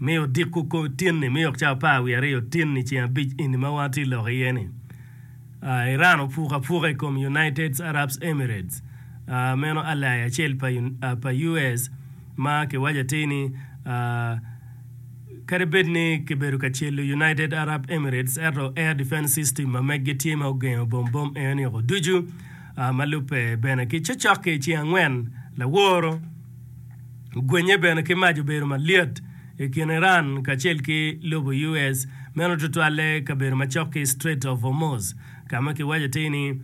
Mi odiko kong tin-ni, mi okca apar wiye aryo tin i ceng abic eni ma wan watye lok iye-ni. Iran opuko apuka i kom United Arab Emirates, meno ally acel pa US ma kiwaco atir ni kadi bed ni kibedo ka celo United Arab Emirates ento air defense system ma megi tye ma ogengo bom bom eno nio ducu. Ma lubbe bene ki cocok-ki i ceng angwen laworo, Gwenye bene ki mac obedo malyet i kin Iran kacel ki lobo US, meno tutwalle kabedo macok ki Strait of Hormuz, ka ma kiwaco atir ni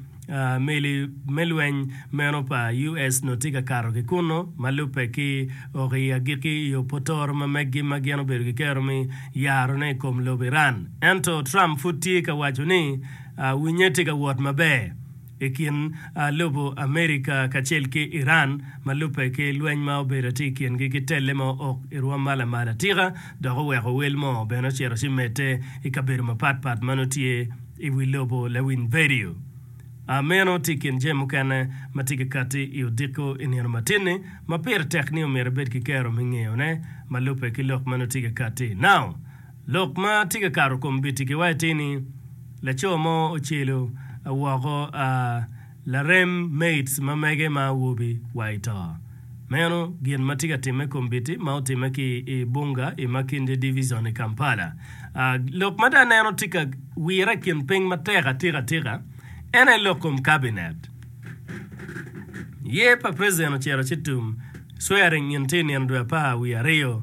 meli me lweny meno pa US onongo tye ka kato ki kunnu, ma lubbe ki oko i agikki i opotoro ma meggi ma gin obedo gikero me yarone i kom lobo Iran. Ento Trump pud tye ka waco ni winnye tye ka wot maber. i kin lobo America kacel ki Iran ma lubbe ki lweny ma obedo atye i kingi ki telle ma ook i rwom ma lamal atika dok oweko wel mo bene ocito ci medde i kabedo mapat pat ma nongo tye i wi lobo Lawiny Vedio a meno tye i kin jami mukene ma tye ki katti i odiko i nino matinni ma pire tek ni omyero ibed ki kero me ngeyone ma lubbe ki lok ma nongo tye ki katti now. Lok ma tye ka kato kom gitikiwa atir ni, Laco mo ocelo woko a larem maids ma mege ma awobi wa i to. Meno gin ma tye ka timme kom biti ma otimme ki i Bunga i Makindye Division i Kampala. A Lok ma dong aneno tye ka wire i kin piny matek atika atika en aye lok kom Cabinet. Yer pa President ocito ci tum, swearing in tye i nino dwe apar wiye aryo.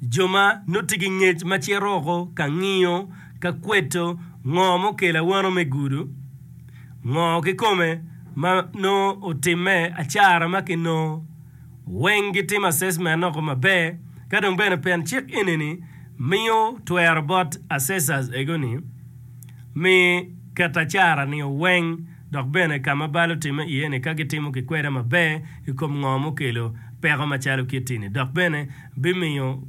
Jo ma nuti ki ngec ma cito oko ka ngiyo ka kweto ngo mukelo awano me gudo, ngo kikome ma nongo otimme, acara ma kinongo, weng gitimo assessment oko maber ka dong bene pen cik enini miyo twero bot assessors ego ni mi ket acara ni oweng dok bene ka ma bal otimme iye ni ka gitimo kikweda maber ikom ngo mukelo peko macalo kitti ni dok bene bimiyo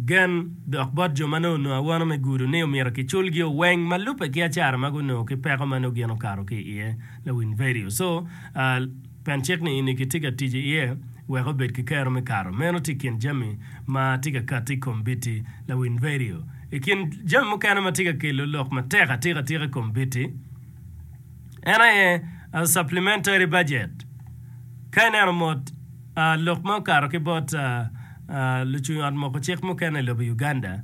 gen dok bot jo ma nongo onongo awono me gudo ni omyero kiculgi oweng ma lubbe ki acara ma gunongo ki peko ma nongo gin okato ki iye lawiny vedio co pen cik ni ini kitye ka tic iye wek obed ki kero me kato meno tye ikin jami ma tye ka kati ikombiti lawiny vedio ikin jami mukene ma tye ka kelo lok matek atika tika ikombiti. En aye supplementary budget. Ka ineno mot lok ma okato ki bot lucung ot moko cik mukene i lobo Uganda,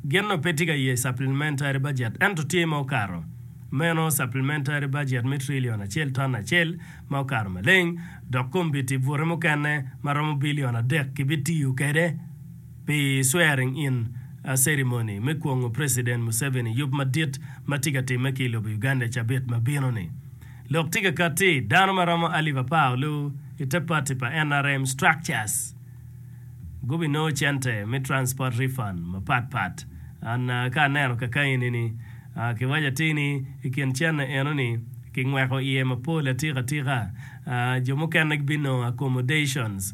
gin nongo pe tye ka ye supplementary budget ento tye ma okato meno supplementary budget me trillion acel ton acel ma okato maleng dok kombiti bute mukene ma romo billion adek kibitiyo kwede. Pi swearing in ceremony me kwongo President Museveni yub madit ma tye ka timme ki i lobo Uganda i cabit ma bino ni, lok tye ka katti dano ma romo alip apar olu i te party pa nrm structures gubi nongo cente me transport refund mapat pat. An ka aneno kakaeni ni, ki waco atir ni i kin cene eno ni ki ngweko iye mapol atika tika, jo mukene gibinongo accommodations